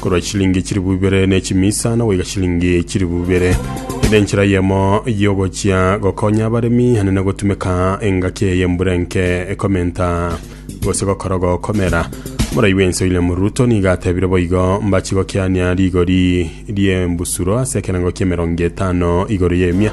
korwa chilingi chilifu ibere ne chimisa na goika chilingi chilifu ibere ere enchera yemo yogochia gokonya abaremi hane na gotumeka engaki eye embura enke ekomenta gose gokora gokomera morai bwense William Ruto nigo atebire boigo mbachi gokiania rigori riembusuro ase ekerengo kiemerongo etano igoro y'emia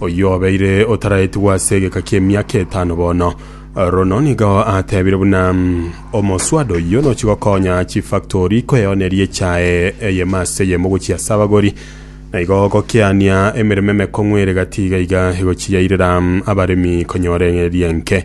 Oyio obeire otaraetigwa ase egeka ki'emiaka etano bono, Rono nigo atebire buna omoswada oyio nochi gokonya chifactori kweoneria echae eyemo ase eyemo gochia ase abagori, na igo gokeania emeremo emekong'u ere gati iga iga egochiyairera abaremi konyora erienke.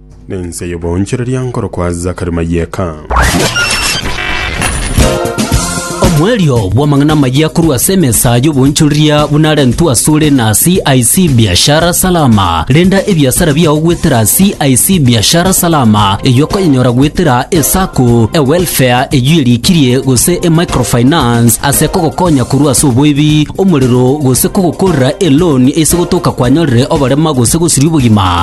Nense y'oboonchoreria nkorokwa Zakari Mayeka. Omoerio bw'amang'ana amayia korwa ase emesa y'oboonchoreria buna arentwe asore na CIC Biashara Salama. Renda ebiasara biao goetera CIC Biashara Salama, eyio okonyenyora goetera eSacco, eWelfare eyio erikirie gose eMicrofinance ase kogokonya korwa ase oboibi, omorero gose kogokorera eloan ase gotoka kwanyorire oborema gose gosiria obogima.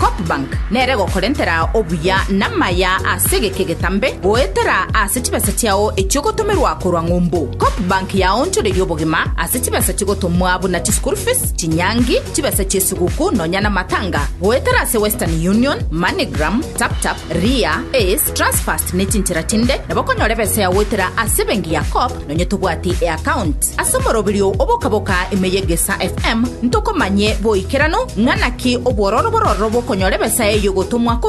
Copbank nere gokorentera obuya namaya ase egeka egetambe goetera ase chibesa chiao echiogotomerwa korwa ng'umbu. Copbank yaonchoreria obogima ase chibesa chigotomwa buna chischool fees, chinyangi, chibesa chiesiguku nonya namatanga goetera ase Western Union, Moneygram, Taptap, Ria, Ace, Transfast nechinchera chinde nabo okonyora ebesa yao goetera ase ebenki ya Cop Nonye tobwati eaccount ase omoroberio obokaboka ime ye Gesa FM, ntokomanye boikeranu ng'a naki obwororo bororo bokonyora ebesa eyio gotomwa korwa